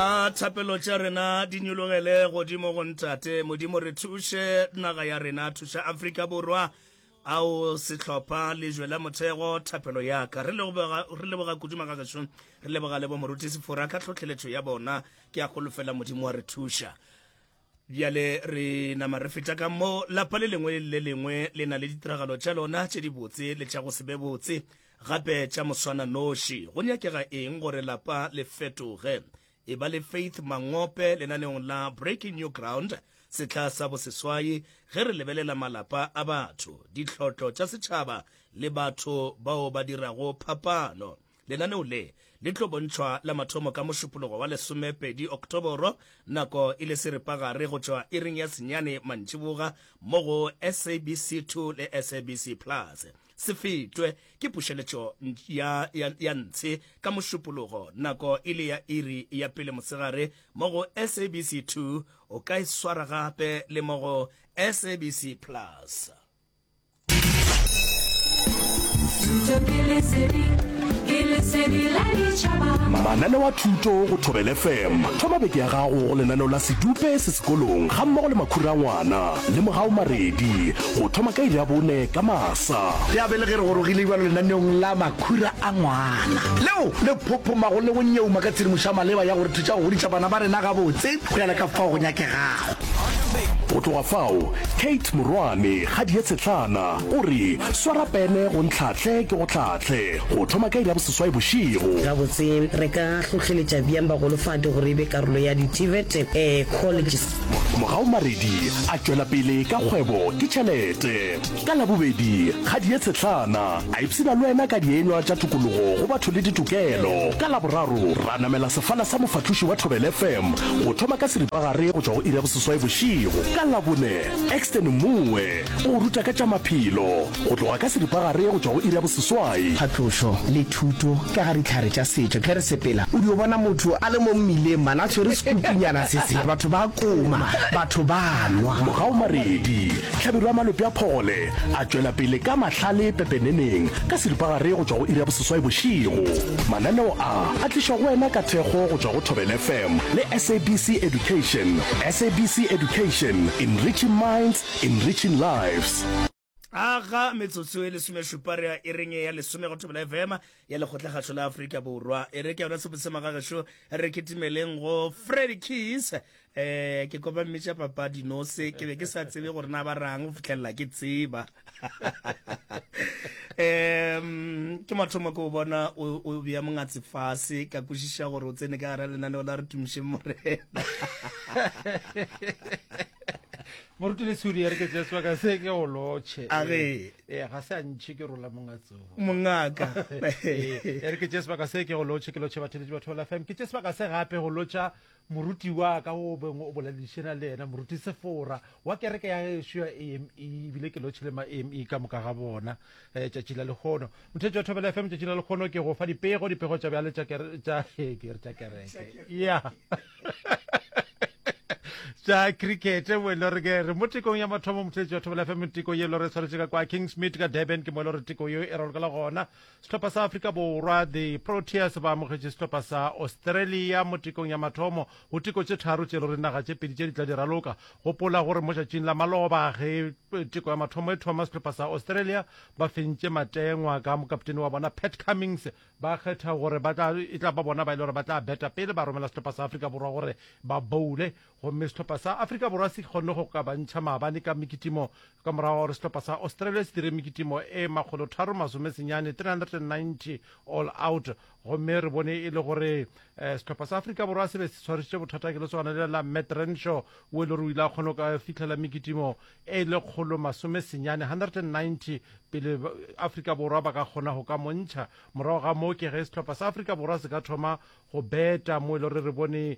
A thapelo tša rena di nyologele godimo go Ntate. Modimo re thuše naga ya rena, thuša Afrika Borwa. Ao sehlopha lejwe la mothego thapelo ya ka. Re leboga, re leboga kudu magageso. Re leboga le bo moruti Sefora ka tlhohleletšo ya bona. Ke a golofela Modimo wa re thuša. Bjale re nama re feta ka mo lapa le lengwe le lengwe le na le ditiragalo tša lona tše dibotse le tša go se be botse gape tša moswana noši. Go nyakega eng gore lapa le fetoge? E ba le Faith Mangope lenaneong la Breaking New Ground sehla sa boseswai ge re lebelela malapa a batho, ditlhotlo tša setšhaba le batho bao ba dirago phapano. Lenaneo le le tlo bontšhwa la mathomo ka Mošupologo wa lesomepedi Oktoboro, nako e le seripagare go tšwa iring ya senyane mantšiboga mo go SABC 2 le SABC Plus. Se fetwe ke pušeletšo ya, ya, ya ntshe ka Mošupologo nako e le ya iri ya pele mosegare mo go SABC 2, o ka e swara gape le mo go SABC Plus. mananeo a thuto go thobele fm thoma beke ya gago go lenaneo la sedupe se sekolong ga mmogo le makhura ngwana le mogao maredi go thoma ka iri ya bone ka masa ya bele ge re gorogile ibalo lenaneong la makhura a ngwana leo le phophomago le go nyeuma ka tshedimošo ya maleba ya gore thuša go godisa bana ba rena gabotse go ya le ka fao go nyakegago Go tloga fao, Kate morwane ga Dietshetlana o re, Swara pene go ntlhahle ke go hlahle, go thoma ka iri ya boseswai bošego. Gabotse, re ka hlohleletša bjang bagolofadi gore e be karolo ya di-TVET Colleges? Mogaomaredi a tšwela pele ka kgwebo ke tšhelete. Ka Labobedi, ga di ye tshetlana, a ipshina le wena ka dienywa tša tokologo go batho le ditokelo. Ka Laboraro, ra namela sefala sa mofahloši wa Thobela FM go thoma ka seripagare go tšwa go iri ya boseswai bošego. Ka Labone, Exton Mmoe o go ruta ka tša maphelo go tloga ka seripagare go tšwa go iri ya boseswai. Phatlošo le thuto ka ga dihlare tša setšo. Ge re sepela, o dio bona motho a le mo mmileng mane a tshwere sekupunyana se se, batho ba koma, batho ba nwa. Morago Maredi, Hlabirwa Malope a phole a tšwela pele ka mahlale pepeneneng ka seripagare go tšwa go iri ya boseswai bošego. Mananeo a a tlišwa go wena ka thekgo go tšwa go Thobela FM le SABC Education. SABC Education, enriching minds, enriching lives. A ga metsotso e lesomešupa re a ireng ya lesome go Thobela FM ya Lekgotlakgašo la Afrika Borwa. E re ke yona Sepotsema ga gešo, re kitimeleng go Freddy Keys eh ke kopa mmetša papa dinose ke be ke sa tsebe gore na ba rang go fitlhelela ke tseba um ke mathomo ke o bona o bea mongatse fase ka kwešiša gore o tsene ka gara lenaneo la re tumišeng morena moruti le tshudi ya re ke jeswa ka se ke go lotšhe age ee ga se a ntšhe ke rola mongatso mongaka ya re ke jeswa ka se ke go lotšhe ke lotšhe batho le batho la fam ke jeswa ka se gape go lotša Moruti wa ka o beng o boledišena le yena, Moruti Sefora, wa kereke ya gešo ya AME, ebile ke lotšhile ma AME ka moka ga bona. Eh, tšatši la lekgono. Mothetši wa Thobela FM, tšatši la lekgono ke go fa dipego, dipego tša bjale tša kere- tša eh, ke re tša kereke. Ya. tša cricket mo e le gore ke re mo tekong ya mathomo mothetši wa thobela fm teko ye e le gore e tshwanetse ka kwa kingsmid ka durban ke mo e le gore teko yeo e ralokela gona Sehlopha sa Afrika Borwa, the Proteas, ba amogetše sehlopha sa Australia mo tekong ya mathomo go teko tše tharo tše le gore naga tše pedi tše di tla di raloka. Gopola gore mo tšatšing la maloba ge eh, teko ya mathomo e thoma, sehlopha sa Australia ba fentše matengwa ka mokaptene wa bona Pat Cummings. Ba kgetha gore ba tla e tla ba bona ba e le gore ba tla beta pele ba romela sehlopha sa Afrika Borwa gore ba boule. Gomme sehlopha sa Afrika Borwa se kgonne go kabantšha maabane ka mekitimo ka morago ga gore sehlopha sa Australia se dire mekitimo e makgolotharo masome senyane, 390 all out. Gomme re bone e le gore sehlopha sa Afrika Borwa se be se tshwarišitše bothata ke lesogana lela la Matt Renshaw wo e le gore o ile a kgona go ka fihlela mekitimo e lekgolo masome senyane, 190, pele Afrika Borwa ba ka kgona go ka mo ntšha. Morago ga moo ke ge sehlopha sa Afrika Borwa se ka thoma go beta mo e le gore re bone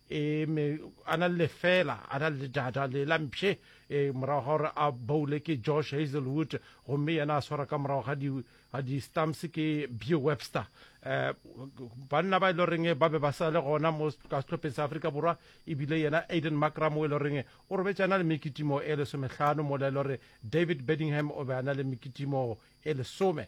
Ee, mme a na le lefela, a na le ledada le la mpshe, ee, morago ga gore a boule ke Josh Hazelwood, gomme yena a swara ka morago ga di, ga di stumps ke Beau Webster. Um banna ba e le goreng ba be ba sa le gona mo ka sehlopheng sa Afrika Borwa, ebile yena Aiden Markram o e le goreng o robetše a na le mekitimo e lesomehlano, mola e le gore David Bedingham o be a na le mekitimo e lesome.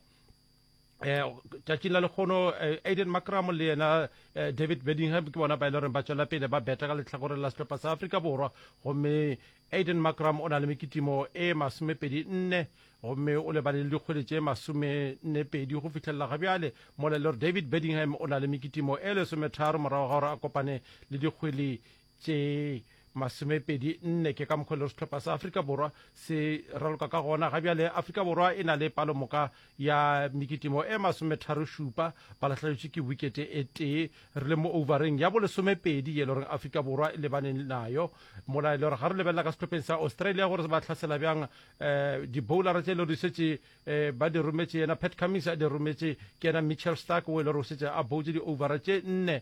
um tšatšing la lekgono eh, aiden macramo le yena eh, david bedingham ke bona ba e le goreng ba tswela pele ba beta ka letlhakoreng la setlhopha sa afrika borwa gomme aiden macram o na le mekitimo e masomepedi nne gomme o lebane le dikgwedi tše masomennepedi go fitlhelela ga bjale mola e le gore david bedingham o na le mekitimo e lesometharo morago ga gore a kopane le dikgwedi tše masomepedi nne. Ke ka mokgwa le sehlopha sa Afrika Borwa se raloka ka gona ga bjale. Afrika Borwa e na le palomoka ya mekitimo e masometharo šupa, ba lahleletšwe ke wikete e tee. Re le mo ouvareng ya bolesomepedi ye le gore Afrika Borwa e lebane nayo mola e le gore ga re lebelela ka sehlopheng sa Australia gore ba hlasela bjang um diboulara tše e le gore di šetše um ba di rometše yena Pat Cummins a di rometše ke yena Mitchell Starc o e le gore o šetše a boutše di-ouvara tše nne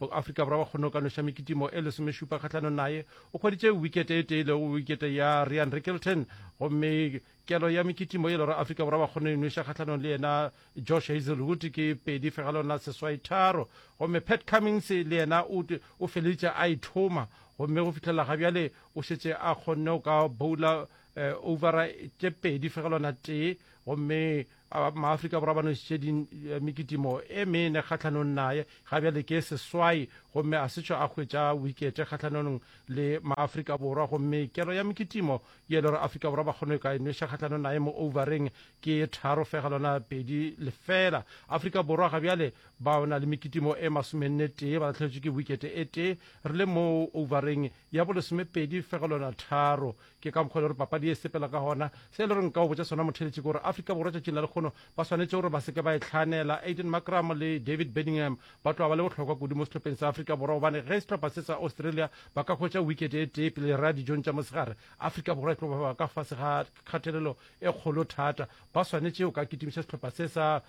Mo-Afrika Borwa wa kgone go ka noša mekitimo e lesomešupa kgahlanong naye. O hweditše wikete e tee lego wikete ya Rian Rickelton gomme kelo ya mekitimo e lora Afrika Borwa wa kgone e nweša kgahlanong le yena Josh Hazelwood ke pedi fegelong la seswai tharo gomme Pat Cummings le yena o, o feleditše a ithoma gomme go fihlelela ga bjale o šetše a kgonne go ka boula eh, overa tše pedi fegelwana tee gomme Maafrika Borwa ba nošitše di eh, mekitimo e mene kgahlanong naye ga bjale ke seswai gomme a setsho a hwetša wikete kgahlanong le maafrika borwa gomme kelo ya mekitimo ye e le gore afrika borwa ba kgone ka e noša kgahlanong naye mo overeng ke tharo fega lona pedi lefela afrika borwa ga bjale ba na le mekitimo e masomenne tee ba latlheletšwe ke wikete e tee re le mo overeng ya bolesomepedi fega lona tharo Ke ka mokgwa e le gore papadi ye e sepela ka gona. Se e le gore nka o botša sona motheeletši ke gore Afrika Borwa tšatšing la lekgono ba swanetše gore ba se ke ba e hlaanela. Aiden Markram le David Bedingham ba tloga ba le bohlokwa kudu mo sehlopheng sa Afrika Borwa gobane ge sehlopha se sa Australia ba ka hwetša wicket e tee pele ra dijong tša mosegare, Afrika Borwa e tlo ba ka fase ga kgatelelo e kgolo thata. Ba swanetše go ka kitimiša sehlopha se sa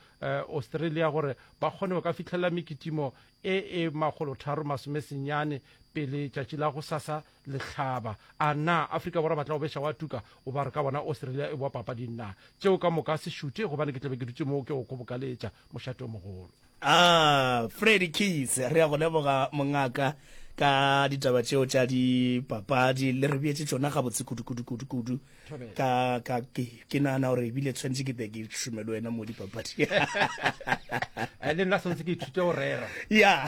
Australia gore ba kgone go ka fihlelela mekitimo e e makgolotharo-masomesenyane pele tšatši la gosasa Lehlaba, A na Afrika Borwa ba tla o beša wa tuka? O ba re ka bona Australia e boa papadi nna. Tšeo ka moka se šute gobane ke tla be ke dutše moo ke go kgobokaletša. Mošate o mogolo. A Freddie Keys, re a go leboga mongaka ka ditaba tšeo tša dipapadi. Le re beetše tšona gabotse kudu-kudu-kudu-kudu. ka ka ke ke nana gore ebile tshwanetse ke be ke šume le wena mo dipapadi eh, le nna tshwanetse ke ithute go rera ya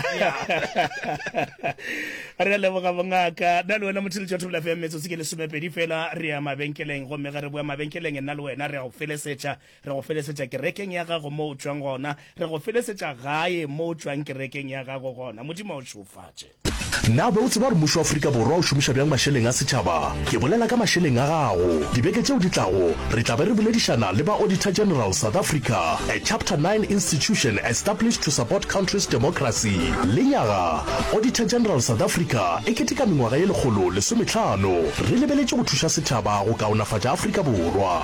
re a leboga bongaka nna le wena motho le tšotho bolafe ya metsotsi ke lesomepedi fela re ya mabenkeleng gomme ge re boa mabenkeleng nna le wena re ya go felesetša Re go felesetša kerekeng ya gago mo o tšwang gona. Re go felesetša gae mo o tšwang kerekeng ya gago gona. Modimo a o šeofatše. Na o be o tseba gore mmušo wa Afrika Borwa o šomiša bjang mašeleng a setšhaba? Ke bolela ka mašeleng a gago. Dibeke tšeo di tlago, re tla be re boledišana le ba Auditor General South Africa, a Chapter 9 institution established to support country's democracy. Lenyaga Auditor General South Africa e keteka mengwaga ye lekgolo lesometlhano, re lebeletše go thuša setšhaba go kaonafatša Afrika Borwa.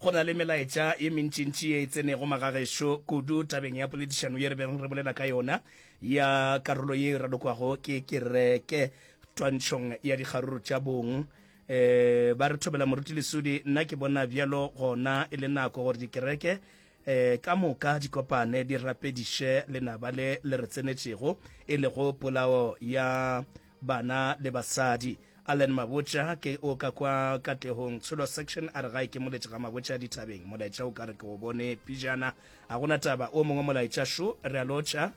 Go na le melaetša ye mentšintši ye e tsenego magagešo, kudu tabeng ya poledišano ye re bego re bolela ka yona ya karolo ye e ralokwago ke kereke twantšhong ya dikgaruru tša bong. E, ba re thobela Moruti Lesudi, nna ke bona bjalo gona e le nako gore dikereke e, ka moka di kopane di rapediše lenaba le le re tsenetšego, e lego polao ya Bana le basadi. Allen Mabotja, ke o ka kwa Katlehong Tsholo Section, a re gae ke moletše ga Mabotja dithabeng. Molaetša o ka re ke o bone pijana. A gona taba, o mongwe molaetša šo, re a lotšha.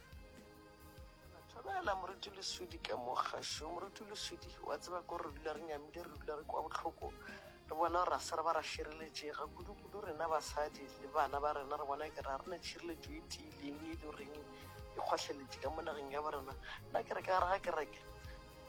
Thobela moruti leswidi ka mo kgašo moruti leswidi wa tseba ko re dula re nyamile re dula re kwa bohloko Re bona gore ga se re ba ra šireletšega, kudukudu rena basadi le bana ba rena. Re bona e kare ga re na tšhireletšo e tiileng e e le goreng e kgohleletše ka mo nageng ya borena. Nna ke re ka gare ga kereke,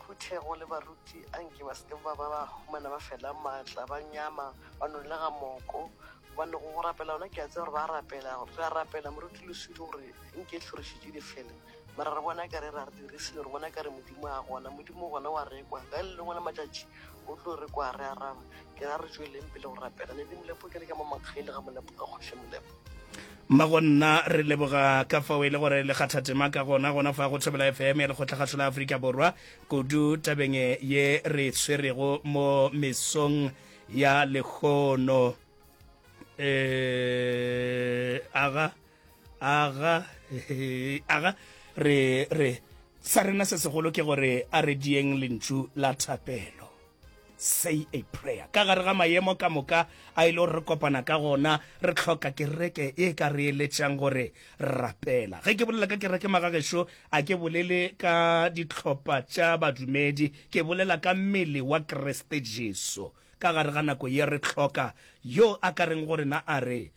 phuthego le baruti a nke ba se ke ba ba ba humana ba fela maatla, ba nyama, ba nolega moko gobane go rapela gona ke a tseba gore ba rapela. Re a rapela moruti Leswidi gore e nke tlhorišo tše di fele mara re bona e kare e re ga re dirise dilo, re bona e kare Modimo ga gona. Modimo gona o a rekwa ka le lengwe la matšatši, O tlo re kwa re araba. Ke ra re tšweleng pele go rapela. Ledi Molepo ke re ke mo makgaile ga Molepo ka kgoši Molepo. Mma go nna re leboga ka fao e le gore le kgatha tema ka gona gona fa go Thobela FM ya Lekgotlakgašo la Afrika Borwa kudu tabeng ye re e swerego mo mesong ya lehono. Eh, aga. aga aga re re sa rena se segolo ke gore a re dieng lentšu la thapelo say a prayer ka gare ga mayemo ka moka a ile gore re kopana ka gona re tlhoka kereke e ka re eletšang gore rapela ge ke bolela ka kereke magagešo a ke bolele ka ditlhopha tša badumedi ke bolela ka mmele wa kriste jesu ka gare ga nako ye re tlhoka yo a ka reng gore na a re